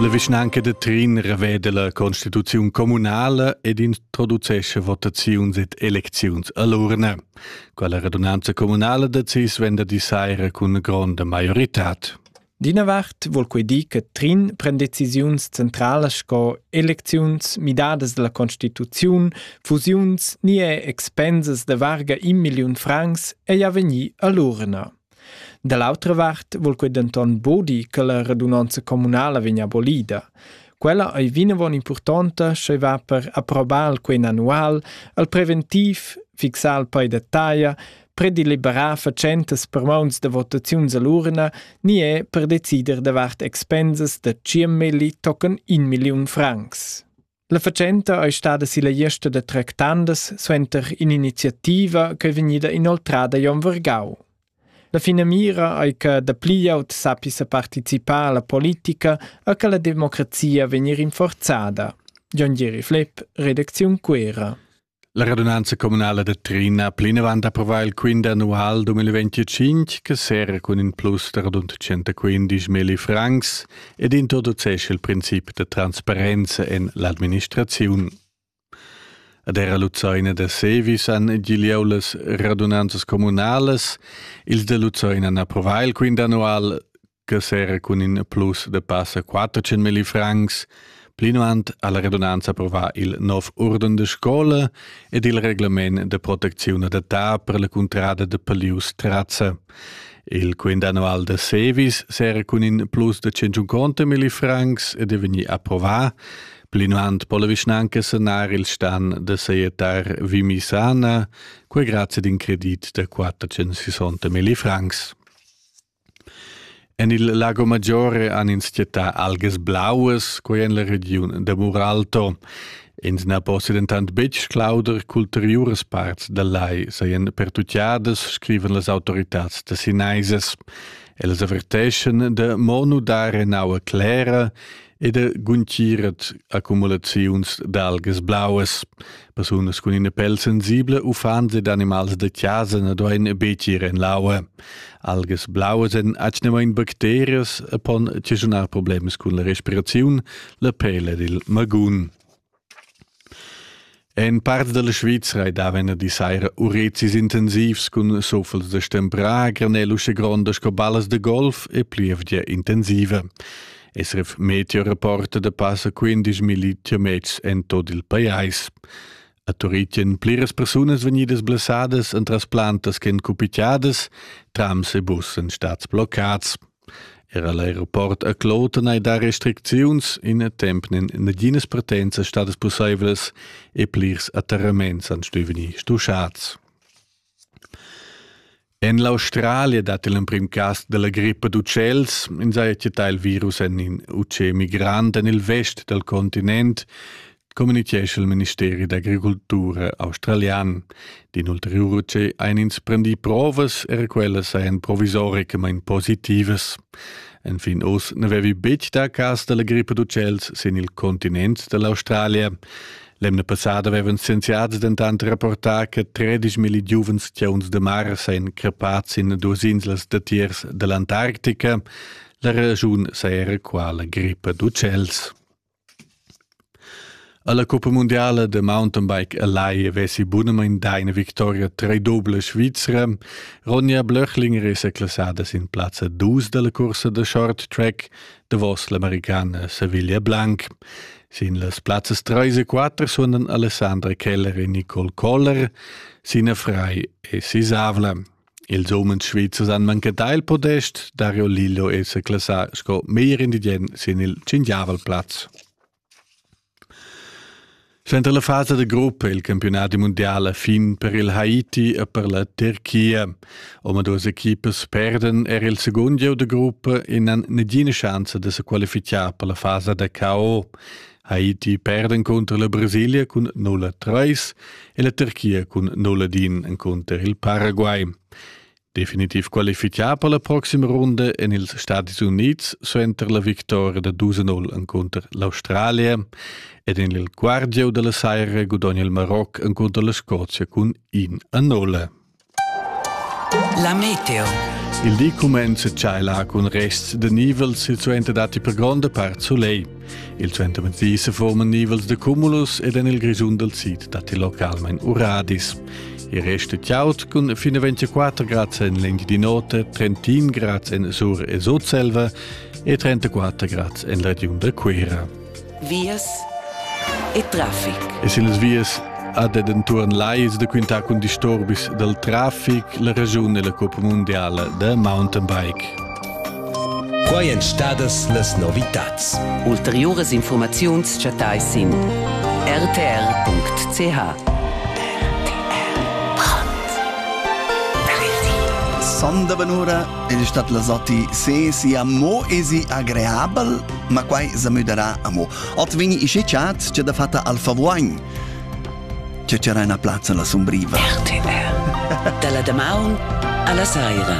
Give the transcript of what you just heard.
La vischnanca da Trin reveda la constituziun communala ed introducescha votaziuns ed elecziuns a l'urna. Quella radunanza communala decis venda di saira cun gronda maioritad. D'ina vart vul quei dir che Trin pren decisiuns centralas sco elecziuns, midadas dalla constituziun, fusiuns ni er expensas da varga in milliun francs ei a vegnir all'urna. Da l'autra vart vul quei denton bodi che la radunanza communala vegn abolida. Quella ei vinavon impurtonta sch'ei va per approbar quei annual al preventiv, fixar il pei da taglia, predeliberar fatschentas per mauns da votaziuns all'urna ni è per decider davart expensas da 100 milli tocken 1 milliun francs. La fatschenta è stada silla gliesta da tractandas suenter in'iniziativa che è vegnida inoltrada Jon Vergau. La finamira è che dapli aut sappia partecipare alla politica e che la democrazia vegni rinforzada. John Jerry Flepp, redazione Quera. La radunanza communala da Trin ha plinavant approvà il quint annual 2025 che serra cun in plus da rund 115 milli francs ed introducesce il princip da transparenza en l'administraziun. Ad era Luzoina da Sevis han gigliau las radunanzas communalas. Ils da Luzoina han approvà il quint annual che sera cun in plus de passa 400.000 francs, plinavant ha la redunanza approvà il nov urden de scola ed il reglement de proteczione d'età per la cuntrada de Palius Trazza. Il quindanual de Sevis sera cun in plus de 150.000 francs ed è vegni approvà, plinavant po la vischnanca sanar il stan de saietar Vimisana, quei grazie d'in credit de 460.000 francs. En il Lago Maggiore han ins chattà algas blauas, quai en la regiun da Muralto. Ins na possia dentant betg sclauder ch'ulteriuras parts dal lai sajan pertutgadas, scrivan las autoritads da sinaisas. Ellas averteschan da mo nudar en aua clera ed ha guntgiret accumulaziuns d'algas blauas. Persunas cun ina pel sensibla, uffants ed animals da chasa na duain betg ir en l'aua. Algas blauas èn atgnamain bacterias e pon occasionar problems cun la respiraziun, la pel ed il magun. En part dalla Svizra ei daven a di saira urezis intensivs cun suffels da stemprà granel usche gronda sco ballas da golf e plievgia intensiva. SRF meteorreporter da passa 15 km en tot il pajais. A Turitien pliras persunas vegnidas blessadas entras plantas ch'en cupitiadas, trams e bus en stads bloccats. Era l'aeroport a Kloten ei dar restricziuns, ina tempnen naginas partenza stadas pusseivlas e plirs atterraments han stuiu vegnir stuschads. En l'Australia dat il emprim cas dalla grippa d'utschels, ins haja chattà il virus en in utschè migrant en il vest dal continent. communichescha il ministeri d'agricultura australian. Din ulteriur che ein ins prendi provas er quelle seien provisoricamain positivas. Enfin oz ne vevi betg da cas della grippe d'uccells sin il continent dell'Australia. L'emna passada avevan scienziati dentant rapportà che 13.000 giuvenstiuns de mare seien crepats in duas inslas datiers dell'Antarctica. La ragiun sei era qua la grippe d'uccells. Alla cuppa mundiala da mountainbike a Lai vesi bunamain dà ina victoria tredobla svizra. Ronja Blöchlinger è seclassada sin plazza dus dalla cursa da short track davos l'americana Sevilla Blanc. Sin las plazzas 3 e 4 suonan Alessandra Keller e Nicole Koller. Sina Frei e Sisavla. Ils umens svizzers han manchetà il podest, Dario Lillo è sa classà sco meglier indigen sin il Cingiavalplatz. Suenter la fasa da gruppa è il campionat mundial fin per il Haiti e per la Turchia. Omaduas equipas perden er il segund gieu da gruppa e n'han negina chance da se qualificar per la fasa da KO. Haiti perd encunter la Brasilia cun 0-3 e la Turchia cun 0-1 encunter il Paraguay. Definitiv qualifichà per la proxima runda en ils Stati Unids suenter la victoria da 2-0 encunter l'Australia ed en il Guardiau della Saira gudogna il Maroc encunter la Scozia cun 1-0. La meteo. Il di cumenza tschailar cun rests de nivels silsuenter datti per gronda part soleil. Il suentermezdi se forman nivels de cumulus ed en il Grischun del Sid datti localmein uradis. Il resto è tiaut cun fino 24 grads en l'Indi di notte, 31 grads en Sur e Sudselva e 34 grads en la regiun de Cuera. vias e traffic. E sin las vias ad ed entuorn lais da quintar cun disturbis dal traffic la ragiun e la coppa mundiala da mountain bike. Quai èn stadas las novitads. Ulteriuras informaziuns chattai sin rtr.ch. Sonda benura, il stat la zotti, se si amo esi agreabel ma quai sa müdarà amo. Ot vegni ische chat che da fatta al favoin. Che c'era una plazza la sumbriva. RTR. Dalla damaun alla saira.